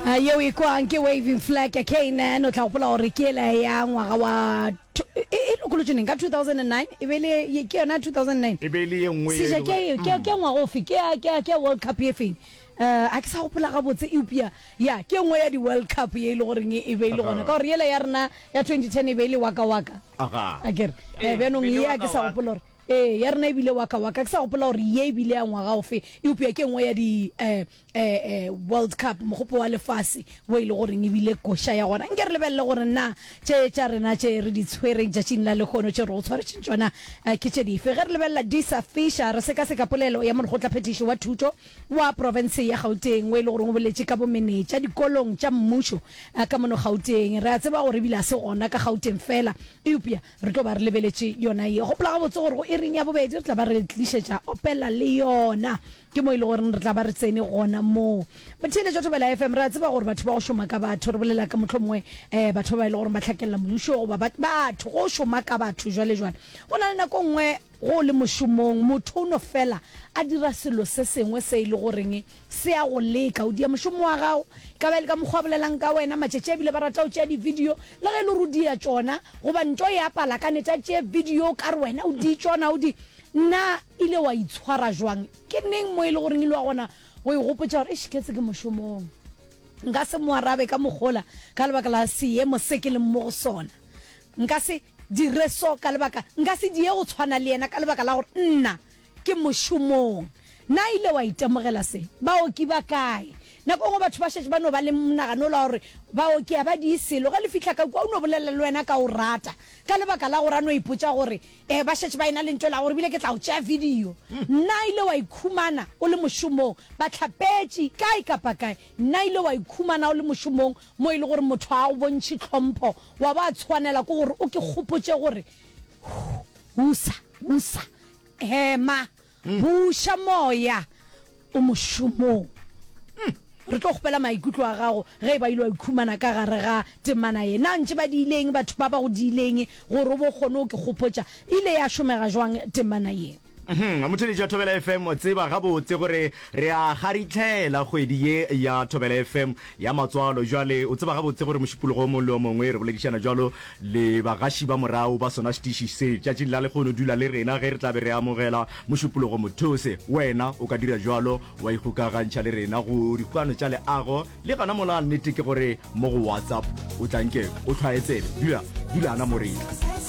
Ah, yeo e kwang ke waving flag ya knan o tla gopola gore ke ele ya ngwaga wa tw- e e lokolotšwe neng ka 2009 e be le ye- ke yona 2009 e be e le ye nngwe e seja leng ke gore- ke ke ngwaga ofe ke ya- ke ya- ke ya world cup e feng um a ke sa gopola gabotse eupša ya ke nngwe ya di-world cup ye e le goreng e be e le gona ka gore yela ya rena ya 2010 e be e le waka waka Aha. a kere Eh, um bjanong pele ye a ke sa waka-waka. gopola gore Ee, ya rena e bile waka waka. Ke sa gopola gore ye e bile ya ngwaga ofe, eupša ke nngwe ya di eh, eh, eh, World Cup, mogopo wa lefase, wo e le goreng e bile koša ya gona. Nke re lebelele gore na tše tša rena tše re di tshwereng tšatšing la lehono, tše re go tshwaretšeng tšona, eh, ke tše dife. Ge re lebelela Disa Fisher, re sekaseka polelo ya molekgotlaphethiši wa thuto wa profense ya Gauteng, wo e le goreng o boletše ka bomenetša dikolong tša mmušo eh, ka mono Gauteng. Re a tseba gore e bile ga se gona ka Gauteng feela, eupša Re tlo ba re lebeletše yona ye. Gopola gabotse gore go iring ya bobedi re tla ba re tlišetša Opela le yona. Ke mo e le goreng re tla ba re tsene gona moo. Batheeletšo Thobela FM, re a tseba gore batho ba go šoma ka batho, re bolela ka mohlomongwe eh batho ba ba e le goreng ba hlakelela mmušo goba ba, batho, go šoma ka batho jwale jwale. Go na le nako e nngwe ge o le mošomong motho o no fela a dira selo se sengwe se e le goreng Se a go leka, o dia mošomo wa gago, e ka ba e le ka mokgwa a bolelang ka wena. Matšatši a bile ba rata go tšea divideo, le ge e le gore o dia tšona, goba nto e a pala ka nete, a tšee video o ka re wena o di tšona, o di. Na ile wa itshwara jwang? Ke neng mo e le goreng ile wa kgona go e gopotša gore, eish, ke se ke mošomong? Nka se mo arabe ka mokgwa ola ka lebaka la seemo se ke leng mo go sona. Nka se dire so ka lebaka, nka se die go tshwana le yena ka lebaka la gore nna. Ke mošomong. Na ile wa itemogela se? Baoki ba kae? Nako nngwe batho ba šetše ba no ba le monagano ola wa gore baoki a ba diye selo. Ge le fihla ka kua, o no bolela le wena ka o rata, ka lebaka la gore a no ipotša gore ee, ba šetše ba e-na le ntwa ela gore bile ke tla o tšea video. Na ile wa ikhumana o le mošomong? Bahlapetši, kae kapa kae. Na ile wa ikhumana o le mošomong mo e le gore motho ga a go bontšhe tlhompho, wa ba tshwanela ke gore o ke kgopotše gore, Husa, husa. Hema, buša moya o mošomong. Hmm. Re tlo kgopela maikutlo a gago ge e ba ile wa ikhumana ka gare ga temana ye. Na ntse ba diileng batho ba ba go diileng gore o bo kgone o ke kgopotša ile ya šomega jwang temana ye? Hmm, motheledi wa Thobela FM, o tseba gabotse gore re a garitlhela kgwedi ye ya Thobela FM Ya matswalo, jwale o tseba gabotse gore mošupologo o mongwe le o mongwe, re boledišana bjalo le bagaši ba morago ba sona setiši se tšatšing la lekgono, dula le rena ge re tla be re amogela mošupologo mothose. Wena o ka dira bjalo, wa ikgokagantšha le rena go Dikgokano tša Leago, le gona mola. Nnete ke gore mo go WhatsApp o tla nke o hlwaye tsebe. Dula, dulana mo re.